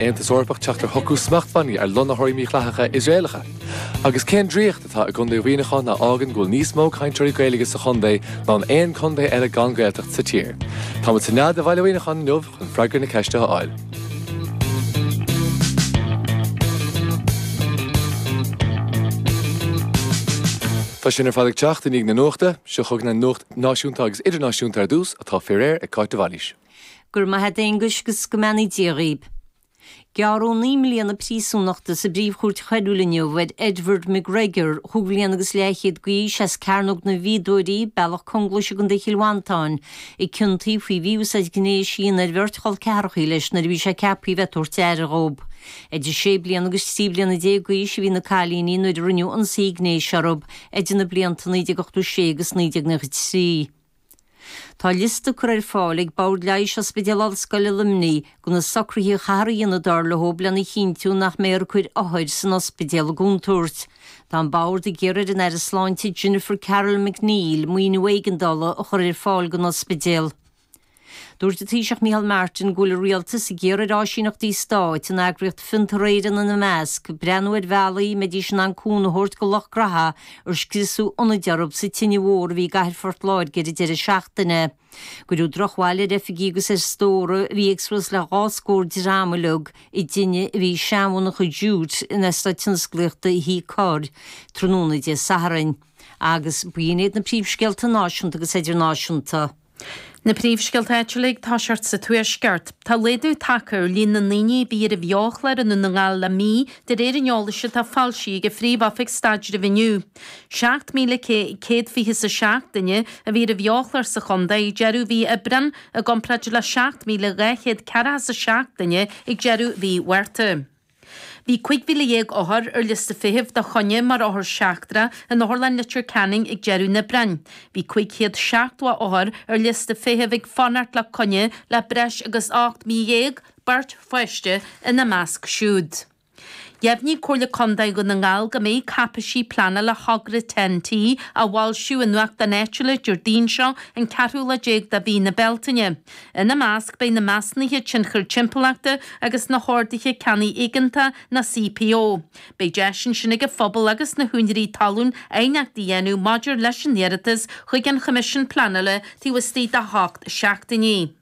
Aontas Eorpach teacht ar shocrú smachtbhannaí ar lonnaitheoirí mídhleathacha Iosraelacha? Agus cén draíocht atá i gContae Mhuineacháin a fhágann go bhfuil níos mó cainteoirí Gaeilge sa chontae ná in aon contae eile gan Gaeltacht sa tír? Táimid sa nead i mBaile Mhuineacháin inniu chun freagra na ceiste a fháil. Tá sin ar fad ag teacht i ndiaidh na nuachta. Seo chugainn an nuacht náisiúnta agus idirnáisiúnta ar dtús, atá faoi réir ag Cáit de Bhailís. Go raibh maith a't Aonghus 'gus go mbeannaí Dia dhaoib. Gearradh naoi mbliana príosúnachta sa bPríomhchúirt Choiriúil inniu ar Edward McGregor, chúig bhliana agus leathchéad d'aois, as Cearnóg na bhFíodóirí, Bealach Conglais i gContae Chill Mhantáin, a ciontaíodh faoi mhí-úsáid ghnéis a dhéanamh ar bheirt chol ceathrachaí leis nuair a bhí sé ceaptha a bheith ag tabhairt aire dhóib. Idir sé bliana agus trí bliana déag d'aois a bhí na cailíní nuair a rinneadh ionsaí gnéis orthub idir na blianta 1986 agus 1993. Tá liosta curtha ar fáil ag Bord Leighis Ospidéal Ollscoile Luimnigh go na socruithe a chaithfear a dhéanamh dar leo lena chinntiú nach mbeifear ag cur othair san ospidéal i gcontúirt. Tá an Bord ag iarraidh ar an Aire Sláinte Jennifer Carroll MacNeill maoiniú éigeandála a chur ar fáil don ospidéal. Dúirt an Taoiseach Micheál Martin go bhfuil a rialtas ag iarraidh ar áisíneachtaí stáit, an eagraíocht Fiontar Éireann ina measc, breathnú ar bhealaí a mbeidís in ann cúnamh a thabhairt go lucht gnaithe ar scriosadh ionaid orthu sa tine mhór a bhí i gcathair Phort Láirge ar an deireadh seachtaine. Cuireadh drochbhail ar oifigí agus ar stór a bhí ag suas le dhá scór dream uilig i dtine a bhí i seanmhonarcha Jute in Eastát Tionsclaíochta Thí Cor tráthnóna Dé Sathairn. Agus b'in iad na príomhscéalta náisiúnta agus idirnáisiúnta. Na Príomhscéalta áitiúla ag tosacht sa Tuaisceart. Tá laghdú tagtha ar líon na ndaoine a bhí ar an bheo-chlár i nDún na nGall le mí, de réir an eolais atá foilsithe ag an Phríomh-Oifig Staidrimh inniu. Seacht míle céad fiche's a seacht duine a bhí ar an bheo-chlár sa chontae ag deireadh mhí Aibreán, i gcomparáid le seacht míle dhá chéad ceathracha 's a seacht duine ag deireadh mhí Mhárta. Bhí 15,000 othar ar liosta feithimh do choinne mar othair sheachtra in Otharlann Leitir Ceanainn ag deireadh an Aibreáin. Bhí 570 othar ar liosta feithimh ag fanacht le coinne le breis agus 18 mí, beirt pháiste ina measc siúd. Dheimhnigh Comhairle Contae Dhún na nGall go mbeidh cáipéisí pleanála thogra Ten T á bhfoilsiú i nuachtáin áitiúla Déardaoin seo an ceathrú lá déag de mhí na Bealtaine. Ina measc beidh na Measnuithe Tionchair Timpeallachta agus na hOrduithe Ceannaigh Éigeantaigh, na CPO. Beidh deis ansin ag an phobal agus na húinéirí talún aighneacht a dhéanamh maidir leis an iarratas chuig an Choimisiún Pleanála taobh istigh de hocht seachtainí.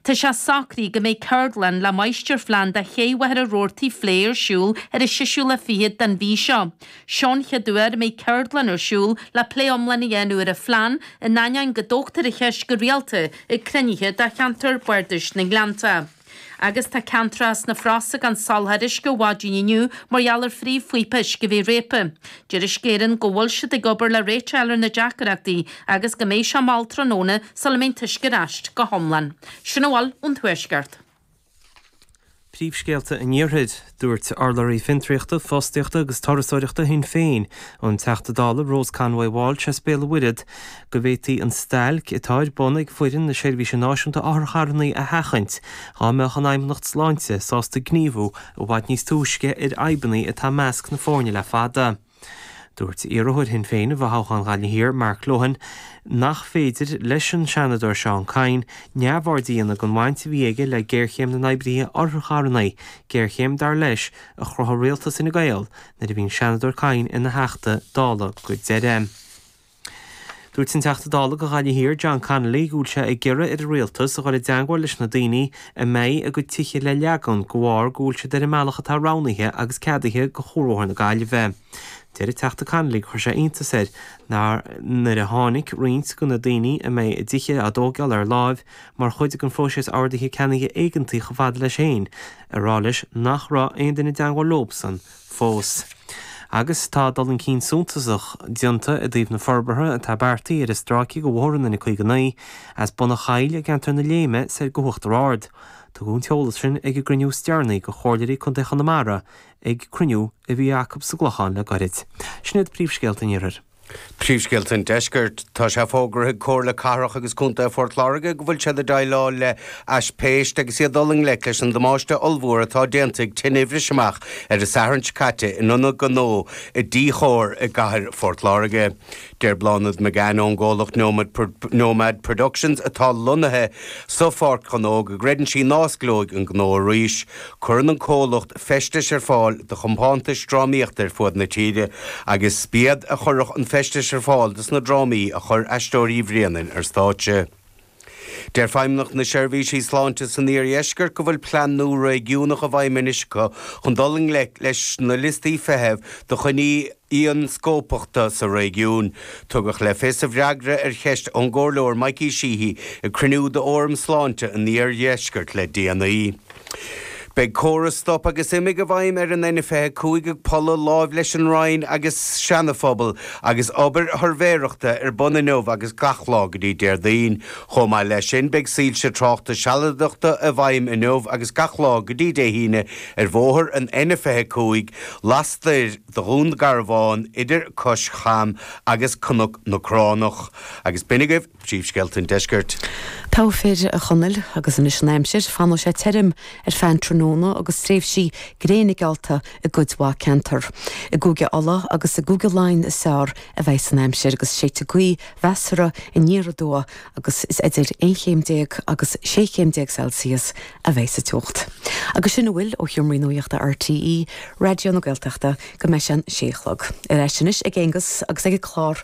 Tá sé socraithe go mbeidh ceardlann le Máistirphlean do Ché Mhachaire Rabhartaigh a phlé ar siúl ar an séú lá fichead den mhí seo. sin cén uair a mbeidh ceardlann ar siúl le plé iomlán a dhéanamh ar an phlean, in ainneoin go dtógtar an cheist go rialta ag cruinnithe de cheantar Bardais na nGleannta. Agus tá ceantracha sna Frosa gan soláthar uisce ó mhaidin inniu mar gheall ar phríomhphíopa uisce a bheith réabtha. Deir Uisce Éireann go bhfuil siad ag obair le réiteach a fháil ar na deacaireachtaí agus go mbeidh sé mall tráthnóna sula mbeidh an t-uisce ar ais go hiomlán. Sin a bhfuil ón Tuaisceart. Príomhscéalta an Iarthair. Dúirt urlabhraí Fiontraíochta, Fostaíochta agus Turasóireachta Shinn Féin, an Teachta Dála Rose Conway-Walsh as Béal an Mhuirthead, go bhféadfaí an stailc atá ar bun ag foireann na Seirbhíse Náisiúnta Otharcharrannaí a sheachaint dhá mbeadh an Fheidhmeannacht Sláinte sásta gníomhú i bhfad níos túisce ar fhadhbanna atá i measc na foirne le fada. Dúirt iarrthóir Shinn Féin i bhfothoghchán Ghaillimh Thiar, Mark Lohan, nach féidir leis an Seanadóir Seán Kyne neamhaird a dhéanamh den bhaint a bhí aige le géarchéim na n-oibrithe otharcharrannaí, géarchéim, dar leis, a chruthaigh rialtas Fhine Gael nuair a bhí an Seanadóir Kyne ina Theachta Dála go deireadh. Dúirt an Teachta Dála go Ghaillimh Thiar John Connolly go bhfuil sé ag iarraidh ar an Rialtas a dhul i dteangmháil leis na daoine a mbeidh a gcuid tithe le leagan de bharr go bhfuil siad ar an mbealach atá roghnaithe agus ceadaithe go Chuarbhóthar na Gaillimhe. Deir an Teachta Connolly gur chuir sé iontas air nuair a tháinig roinnt de na daoine a mbeidh a dtithe á dtóigeáil ar láimh mar chuid den phróiseas Ordaithe Ceannaigh Éigeantaigh chomh fada leis féin ag rá leis nach raibh aon duine i dteangmháil leobsan fós. Agus tá dul chun cinn suntasach déanta i dtaobh na forbartha atá beartaithe ar an stráice go Bhóthar an N59, as Bun a' Choill i gceantar na Léime soir go hUachtar Ard. Tugadh an t-eolas sin ag an gcruinniú is deireanaí de Chomhairleoirí Contae Chonamara ag cruinniú a bhí acu sa gClochán le gairid. Sin iad príomhscéalta an Iarthair. Príomhscéalta an Deiscirt. Tá sé fógartha ag Comhairle Cathrach agus Contae Phort Láirge go bhfuil siad ag déileáil le haispeist agus iad ag dul i ngleic leis an damáiste ollmhór atá déanta ag tine a bhris amach ar an Satharn seo caite in ionad gnó i dTí Chomhair i gCathair Phort Láirge. Deir Bláthnaid McGann ón gcomhlacht Nomad Productions atá lonnaithe sa Pháirc Ghnó go gcreideann sí ná osclóidh an gnó arís Cuireann an comhlacht feistis ar fáil do chompántais drámaíochta ar fuaid na tíre agus b'iad a chuireadh an feistis ar fáil dos na drámaí a chuir Aisteoirí Bhréanainn ar stáitse. Deir Feidhmeannacht na Seirbhísí Sláinte san Iardheisceart go bhfuil plean nua réigiúnach i bhfeidhm anois acu chun dul i ngleic leis na liostaí feithimh do choinní ionscópachta sa réigiún. Tugadh le fios i bhfreagra ar cheist ón gComhairleoir Mikey Sheehy ag cruinniú d'Fhóram Sláinte an Iardheiscirt le déanaí, Beidh córas stop agus imigh i bhfeidhm ar an N25 ag Pulla láimh leis an Roinn agus Seanaphobail agus obair shuirbhéireachta ar bun inniu agus gach lá go dtí Déardaoin. Chomh maith leis sin beidh soilse tráchta sealadachta i bhfeidhm inniu agus gach lá go dtí Dé hAoine ar bhóthar an N25 lastoir de Dhún Garbháin idir Cois Cham agus Cnoc na Gráinsí. Agus b'in agaibh. Príomhscéalta an Deiscirt. Go raibh maith agat a Chonaill agus anois an aimsir, fanfaidh sé tirim ar feadh an tráthnóna agus tréimhsí gréine geala i gcuid mhaith ceantar. I gCúige Uladh agus i gCúige Laighean is fearr a bheidh an aimsir agus séidfidh gaoth mheasartha aniar aduaidh agus is idir aon chéim déag agus sé chéim déag Celsius a bheidh sa teocht. Agus sin a bhfuil ó sheomra nuachta RTÉ Raidió na Gaeltachta go mbeidh sé an sé a chlog. Ar ais anois ag Aengus agus ag a chlár.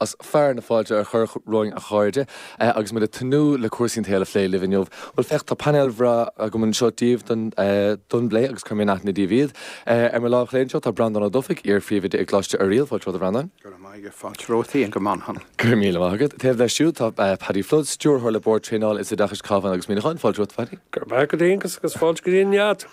Is fearr ná fáilte a chur romhainn a chairde agus muid ag tnúth le cúrsaí an tsaoil a phlé libh inniu. Bhuel féach, tá painéal breá agam anseo daoibh don phlé agus cuirfidh mé in aithne daoibh iad. Ar mo lámh chlé anseo tá Breandán Ó Dufaigh, iarphríomhoide i gColáiste Oiriall, fáilte romhat a Bhreandáin. Go raibh maith agat, fáilte romhat féin go Muineachán. Go raibh míle maith agat. Taobh leis siúd tá Paddy Flood, stiúrthóir le Bord Traenála is Oideachais Cabhán agus Muineachán, fáilte romhat a Phaddy. Go raibh maith agat Aengus agus fáilte go dtí an Nead.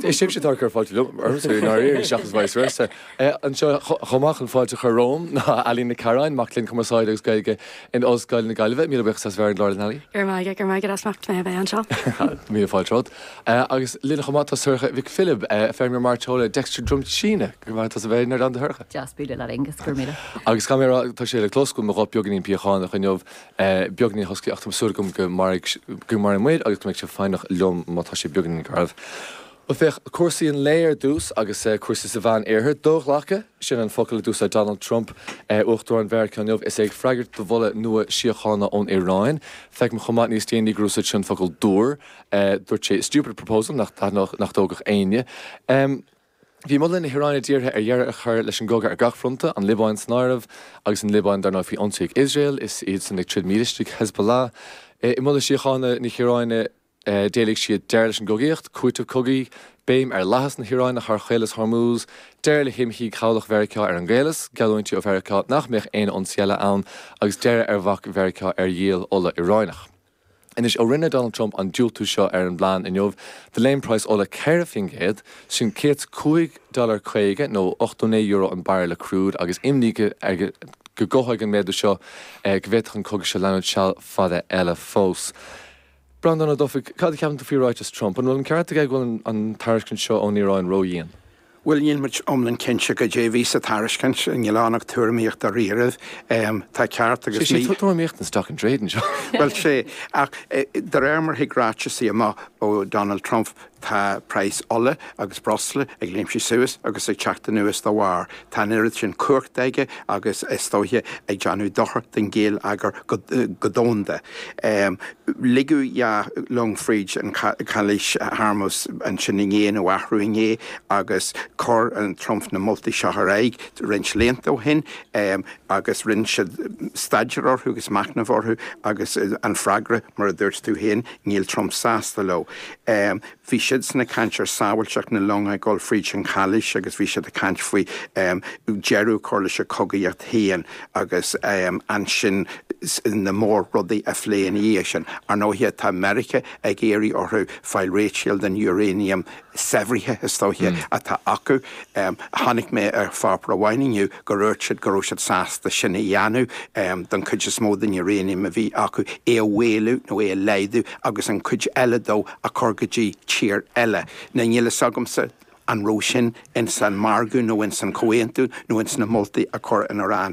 Is sibhse atá ag cur fáilte liom, ormsa i ndáiríre, seachas vice versa. É anseo chomh maith chun fáilte a chur romham ná Ali Nic Carráin, mac léinn Cumarsáide agus Gaeilge in Ollscoil na Gaillimhe. Míle buíochas as bheith ar an gclár linn, Ali. Go raibh maith agat. Go raibh maith agat as ucht mé a bheith anseo. Míle fáilte romhat. Agus linn chomh maith tá Sorcha Mhic Philib, feirmeoir mairteola Dexter Drum tSíne. Go raibh maith agat as a bheith inár gcuideachta Shorcha. Deas bualadh leat Aengus. Go raibh míle. Agus caithfidh mé a rá tá sé le cloisteáil go bhfuil mo ghuth beagainín piachánach inniu. Beagainín husky ach tá súil agam go mairfidh muid agus go mbeidh sibh foighneach liom má tá sé beagainín garbh. Bhuel, féach, cúrsaí an lae ar dtús, agus cúrsaí sa Mheán-Iarthar. Doghlactha, sin an focal a d'úsáid Donald Trump, Uachtarán Mheiriceá inniu, is é ag freagairt do mholadh nua síochána ón Iaráin. Feicim chomh maith, níos déanaí, gur úsáid sé an focal dúr. Dúirt sé stupid proposal, nach dtaitneodh, nach dtógfadh éinne. Bhí moladh na hIaráine dírithe ar dheireadh a chur leis an gcogadh ar gach fronta, an Liobáin san áireamh, agus an Liobáin, dar ndóigh, faoi ionsaí ag Iosrael, is iadsan ag troid mílistigh, Hezbollah. I moladh síochána na hIaráine, D'éiligh siad deireadh leis an gcogaíocht, cúiteamh cogaidh, béim ar fhlaitheas na hIaráine thar Chaolas Hormuz, deireadh le himshuí cabhlach Mheiriceá ar an gCaolas, geallúintí ó Mheiriceá nach mbeadh aon ionsaí eile ann, agus deireadh ar bhac Mheiriceá ar dhíol ola Iaráineach. Anois, ó rinne Donald Trump an diúltú seo ar an bplean inniu, do léim praghas ola 4 faoin gcéad, sin céad is cúig dhollar caoga nó ochtó naoi euro an bairille crude, agus imní air go gcothóidh an méadú seo go bhféadfadh an cogadh seo leanúint seal fada eile fós. Breandán Ó Dufaigh, Cad a cheapann tú faoi ráiteas Trump? An bhfuil an ceart aige go bhfuil an tairiscint seo ón Iaráin ró-dhian? Bhuel, níl muid iomlán cinnte goidé a bhí sa tairiscint. Níl ann ach tuairimíocht dairíribh. Tá ceart agus mícheart. Sé sin tuairimíocht an stock in trade anseo. Bhuel, 'sé, ach de réir mar thig ráiteasaí amach ó Donald Trump, Tá praghas ola agus breosla ag léimsigh suas agus ag teacht anuas dá bharr. Tá an oiread sin cumhachta aige agus is dóiche ag déanamh dochar don ghéilleagar go domhanda. Ligeadh dhá long fríd an Chaolas Hormuz ansin inné, nó arú inné, agus chuir Trump na moltaí seo ar aghaidh roinnt laethanta ó shin agus rinne siad staidéar orthu agus machnamh orthu agus an freagra, mar a dúirt tú féin, níl Trump sásta leo. em. bhí siadsan ag caint ar sábháilteacht na long ag dul fríd an chaolas agus bhí siad ag caint faoi, em. deireadh a chur leis an chogaíocht féin agus, em. ansin na mór rudaí a phlé ina dhiaidh sin. Ar ndóighe tá Meiriceá ag iarraidh orthu fáil réitigh den uranium saibhrithe is dóiche atá acu. Em. Chonaic mé ar pháipéar amháin inniu go ndúirt siad go raibh siad sásta sin a dhéanamh, em. don chuid is mó den uranium a bhí acu, é a mhaolú nó é a laghdú, agus an cuid eile dó a chur go dtí tír eile. Now níl fhios agamsa an raibh sin ins an margadh nó ins an chomhaontú nó ins na moltaí a chuir an Iaráin.